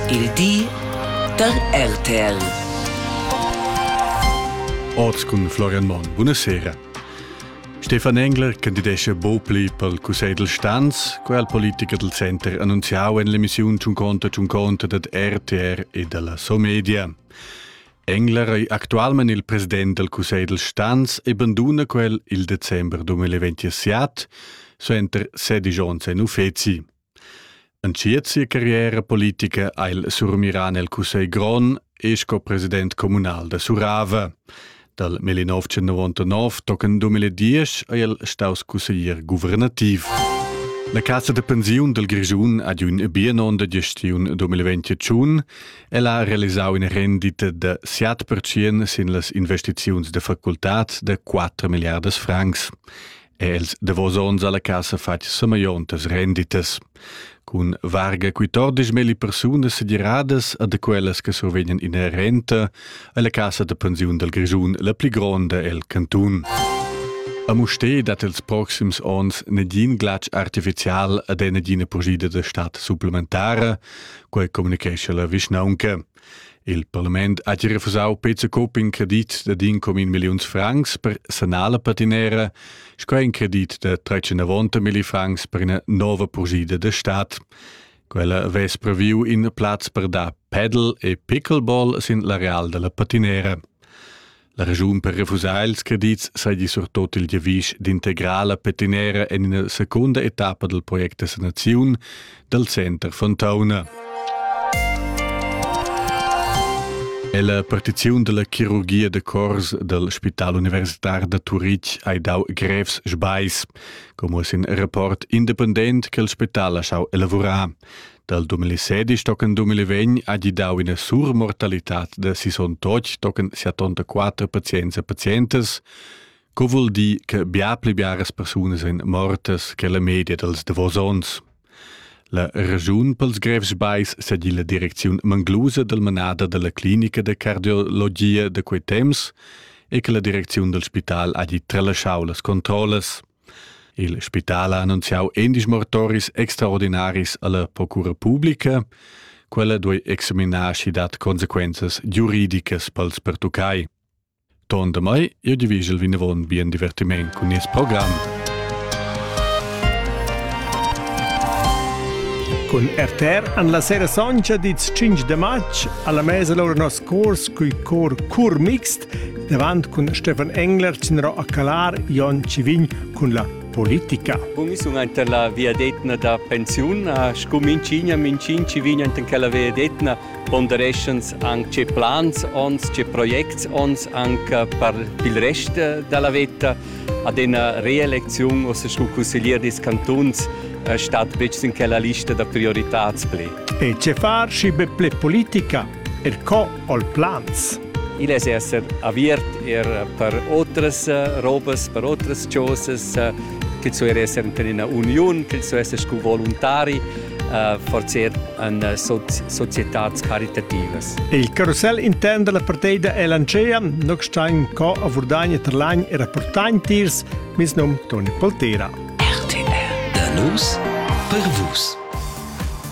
Il di da RTL. Oz cun Florian Monn. Buonasera. Stefan Engler candidescha Bopli pel Cussegl del Stanz, quel politiker del Center annunziau en l'emissiun Ciun conta ciun conta dad RTR e dalla Somedia. Engler ei actualment il president del Cussegl del Stanz e banduna quel il december 2027, suenter sedigions en uffeci. Entschiet sia carriera politica ha el surmirà nel cussegl grond e sco president communal da Surava. Dal 1999 tochen 2010 è el staus consiglier guvernativ. La casa de pensiun del Grischun ad un bianon de gestiun 2021 el ha realisau una rendita de 7% sin las investiziuns de facultad de 4 miliardas francs. Els davos ons alla casa fatg sameiontas renditas. Cun varga quittordisch melli persunas segiradas a de quellas che survegnan ina renta alla casa de pensiun del Grischun la pli gronda el cantun. A Musté dat els proxims ons negin glatsch artificial ad ena gina pugida de stat supplementara, quei comunicescha la vischnaunca. Il parlament ha gia refusau Peter Coop in credit da din com in milliuns francs per sanar la patinera, sco in credit da 390 milli francs per ina nova purgida da stat. Quella vess previu in plaz per dar paddle e pickleball sin l'areal dalla patinera. La regiun per refusar ils credits saja surtut il giavisch d'integrala petinera en ina secunda etappa dal project da sanaziun dal center Fontauna. E la partiziun della chirurgia de cors del Spital Universitar da Turitg ha dau grevs sbais, como sin rapport independent che il spital ha schau elaborar. Dal 2016 tochen 2020 ha gidau ina surmortalitad da 68 tochen 74 pazients e pazientas, co vul dir che bia pli biaras persunas ein mortas che la media dals davos onns. La regiun pels grevs bais sedi la direcziun manglusa del manada della clinica de cardiologia de quei temps e che la direcziun del spital ha di tralasciau las controllas. Il spital ha annunziau endisch mortoris extraordinaris alla procura publica. Quella duei examinar schi dat consequenzas giuridicas pels pertuccai. Ton da mai, io divigel vinavon bien divertiment cun nies program. Cun RTR an la sera soncha dits 5 de matg alla mesa lor nos cors cui cor cur mixt Davant cun Stefan Engler tinro a calar Jon Civign cun la politica. Mi sun anta la viadetna da pensiun, scu minchigna mincin ci vign anta quella viadetna pondereschans anche ce plans ons, ce projects ons anche per il rest della vetta. Ad una reelezione o scu consiglier des cantuns stat bec in quella lista da prioritats ple. E ce far si be ple politica? Er co ho'l plans? Igl es esser aviert er per otras robas, per otras chosas, ch'el so er esser in ina uniun, ch'el so esser scu voluntari, uh, forzer an uh, so societats caritativas. Il carusel intern della parteida è lancea, noc stein co a Vurdagna Terlagn e rapportain tiers, mis nom Toni Poltera. RTR, da nus, per vus.